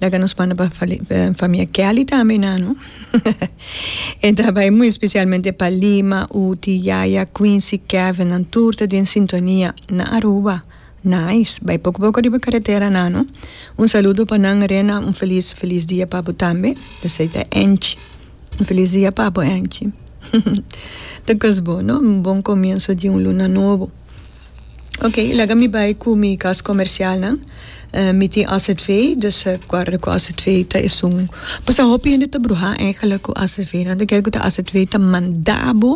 Laga nos manda pa famia Kelly tambe nano e ta bai muy especialmente pa Lima, Uti, Yaya, Quincy, Kevin nan tur ta den sintonia na Aruba nice bai poco poco riba carretera nano un saludo pa nan Rena un feliz feliz dia pa bo tambe esey ta Angie un feliz dia pa bo Angie ta cos bo no un bon comienzo di un luna nobo. Ok i laga mi bai ku mi kas komersialnan mi tin azv dus guarda ku azv ta esun pasá hopi hende ta bruhá eigenlijk ku azv nan ta kere ku azv ta manda bo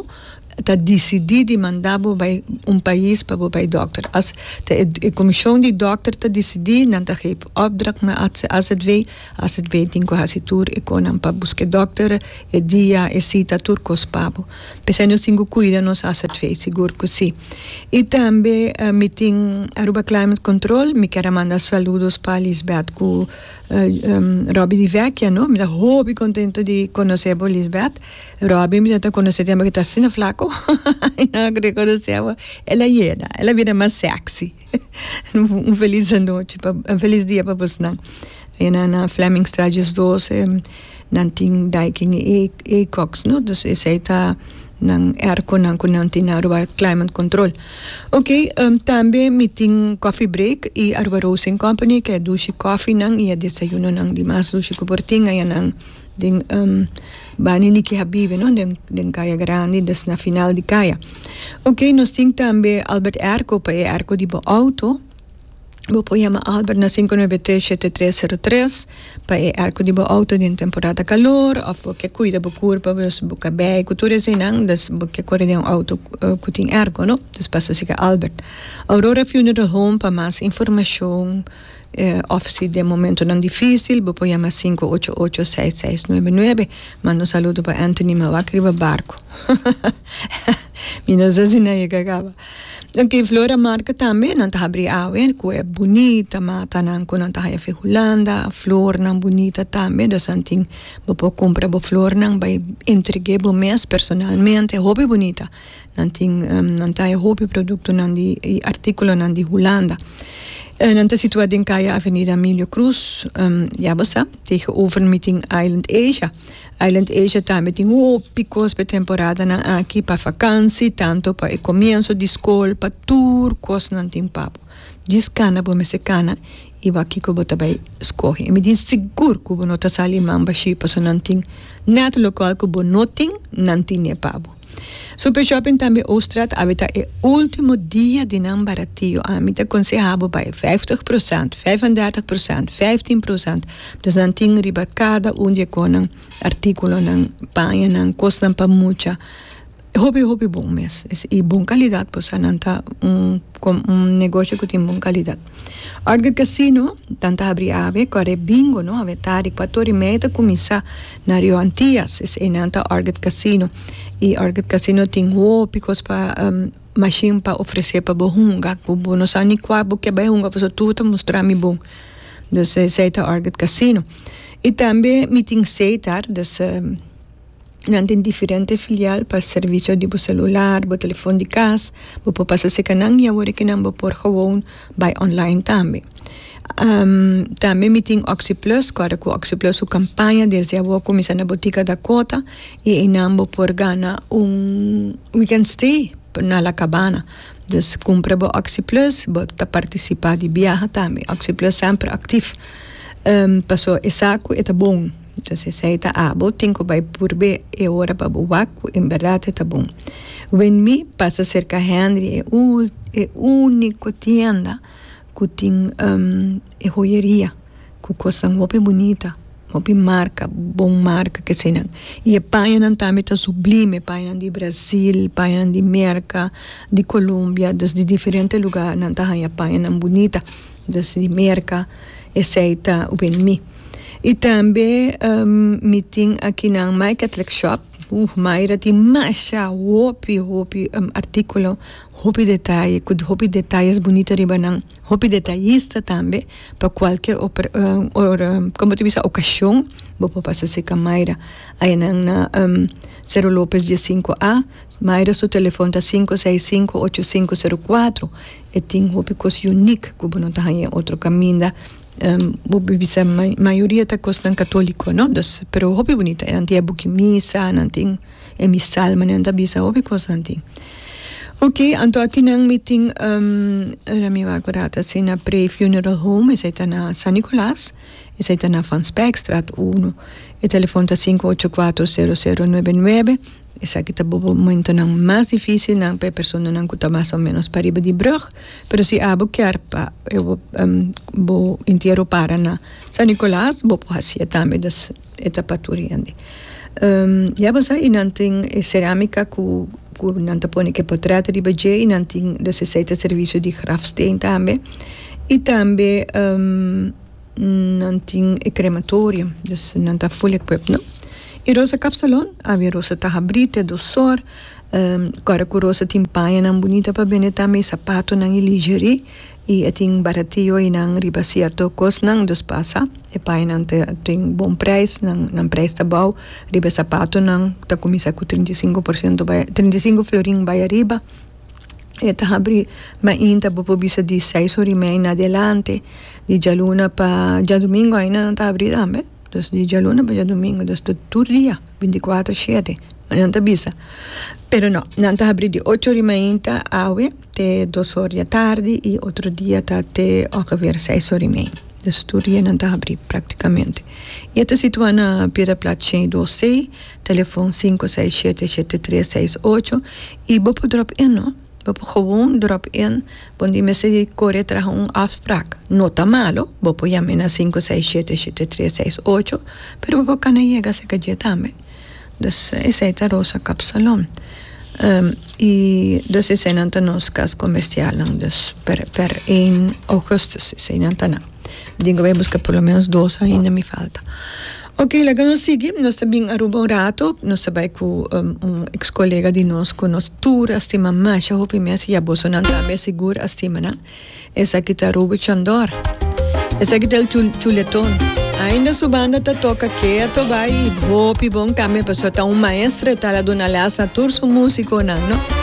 ta disidí di manda bo bai un pais pa bo bai dòkter as ta e komishon di dòkter ta disidí nan ta gevi por opdracht na azv azv tin ku hasi tur e konan pa buska e dòkter e dia e sita tur kos pa bo. P'esei nos tin cu cuida nos asadvee, sigur cu si. Y tambe mi tin Aruba Climate Control, mi ker a manda saludos pa Lisbeth cu Robbie di Vecchia, no. Mi ta hopi contento di conoce bo Lisbeth. Robbie mi ta conoce tempo cu e ta asina flaco, y no a reconoce bo. El a yeda, el a bira mas sexy. Un felis anochi pa un felis dia pa bosnan e nan na Fleming straat dies doce nan tin daikin i e e koks no dus esei ta nan erkonan ku nan tin na Aruba klaiman kontrol ok tambe mi tin kofi break i Aruba roast en kompani ke dushi kofinan i e desayunonan di mas dushi ku por tin ayanan den. Bani ni ki a bibe no den kaya grandi dus na final di kaya ok nos tin tambe Albert Erco pa e Erco di bo auto bo por yama Albert na sinku nuebe tres shete tres seru tres pa e Erco di bo auto den temporada kalor of bo ke kuida bo kur pa bo bo ka bei ku tur eseinan dus bo ke kore den un auto ku tin Erco no dus pasa si ka Albert Aurora funeral home pa mas informacion. Òf si den momentonan difísil bo por yama sinku ocho ocho seis seis nuebe nuebe. Manda un saludo pa Anthony Mawak riba barku. Mi no sa si nan e ka kaba. Ok, Flor a marka tambe nan ta habri awe ku e bunita matanan ku nan ta haya fi Hulanda. Flornan bunita tambe Dosantin. Bo por kumpra bo flornan bai entreg'é bo mes personalmente. Hopi bunita. Nan tin nan taye hopi produktonan di i artíkulonan di Hulanda. Nan ta situá den kaya Avenida Emilio Cruz. Ya bo sa, tegenover mi tin Island Asia. Island Asia tambe tin hopi kos pa e temporadanan aki, pa fakansi, tantu pa e komienso di skol, pa tur kosnan tin pa bo. Djis kana bo mester kana i wak kiko bo ta bai skohe. Mi tin sigur ku bo no ta sali mamba shi, pasobra nan tin nèt lo kual ku bo no tin, nan tin'é pa bo. Super Shopping tambe Ooststraat awe ta e ultimo dia di nan baratio ami ta konseha bo bai vijftig prosent, vijf en dertig prosent, vijftien prosent dus nan tin riba kada un di e konan artikulonan paña nan kosnan pa mucha hopi hopi bon mes i bon kalidat por sa nan ta un un negoshi ku tin bon kalidat Orchid Casino nan ta habri awe kore bingo no awe tardi kuator i media ta kuminsá. Na Rio Antias es einan ta Orchid Casino y Orchid Casino tin hopi cos pa um machine pa ofrece pa bo hunga cu bo no sa ni cua bo ke bay hunga pasobra tur ta mustra mi bon dus esey ta Orchid Casino y tambe mi tin Zeetar dus nan tin diferente filial pa servicio di bo celular bo telefon di cas bo por pasa cerca nan y awor e kinan bo por gewoon bay online tambe. Tambe mi tin Oxi-plus, ku ku Oxi-plus su kampaña desde awo a kuminsá na botika ta kota i einan bo por gana un weekend stay na La Cabana. Dus kumpra bo Oxi-plus, bo ta partisipá di biaha tambe. Oxi-plus semper aktiv, paso esei ku e ta bon. Pues esei ta abo tin ku bai purb'é e ora pa bo wak ku en berdad e ta bon. Wen Mi pasa serka Henry, e ul, e úniko tienda. ku tin e hoyeria ku kosnan hopi bunita hopi marka bon marka kesenan i e pañanan tambe ta sublime pañanan di Brasil pañanan di Merka di Colombia dus di diferente lugar nan ta haña pañanan bunita dus di Merka esei ta wen mi i tambe mi tin akinan Mike Athleck Shop uh maira tin masha hopi hopi artikulo. Hopi detaye cu hopi detayes bunito riba nan. Hopi detayista tambe pa cualkier como ta bisa ocasion bo por pasa cerca Mayra ayenan na Cero Lopez dies cinco a Mayra su telefon ta sinku seis sinku ocho sinku sero cuatro e tin hopi cos unic cu bo no ta haya en otro caminda bo por bisa mayoria ta cosnan catolico no pero hopi bunita nan tin e buki misa nan tin. E mi salmonan ta bisa hopi cosnan tin. Ok, anto aki nan mi tin, um, ora mi wak orat asi na Pre Funeral Home, esai ta na San Nicolas, esai ta na Van Spijkstraat uno. E telefon ta sinku ocho kuater sero sero nuebe nuebe, esaki ta bo momentonan mas difisilnan pa e personanan ku ta mas o menos pariba di brug, pero si abo kier pa bo entiero para na San Nicolas bo por hacia tambe. e ta paturi andi. Ya bo sa, y nan tin e cerámica cu cu nan ta pone e portret riba dje y nan tin los esey ta servicio di grafsteen tambe. Y tambe nan tin e crematorium, dus nan ta full equipped no. Y Rosa Kapsalon, awe Rosa ta habrí te dos sor, ora cu Rosa tin pañanan bunita pa bende tambe, y sapatonan y lingerie. Y e tin baratiu einan riba cierto cosnan dos pasa e painan ta tin bon prijs nan nan prijs ta bou riba e sapatonan ta cuminsa cu trinta y cinco por ciento bay trinta y cinco florin bay ariba e ta habri mainta bo por bisa di seis horamedia en adelante di dialuna pa diadomingo einan nan ta habri tambe. Dos di djaluna pa djadumingu dos ta tur dia binticuatro shete ma nan ta bisa pero no nan ta habri di ocho ori mainta awe te dos or dia tardi y otro dia ta te ongeveer seis ori mei dos tur dia nan ta habri practicamente y e ta situa na piedra plat shei dos sei telefon cinco seis shete shete tres seis ocho y bo por drop e no. Bo por gewoon drop in bo tin mester di kore traha un afspraak. No ta malo, bo por yam'e na sinku seis shete shete tres seis ocho, pero bo por kana yega aseka dje tambe. Dus, esei ta Rosa Kapsalon. i dus eseinan ta nos kas komersialnan, dus per, per ein ougùstùs eseinan ta nan. Mi tin ke bai buska por lo menos dos ainda mi falta. Oke laga nos sigui nos ta bin Aruba un rato nos ta bai ku un eks kolega di nos ku nos tur a stima masha hopi mes i abosonan tambe sigur a stima nan esaki ta Ruby Chondor esaki ta el chuleton ainda su banda ta toka kea to bai i hopi bon tambe paso ta un maestro e ta la duna les a tur su musikonan no.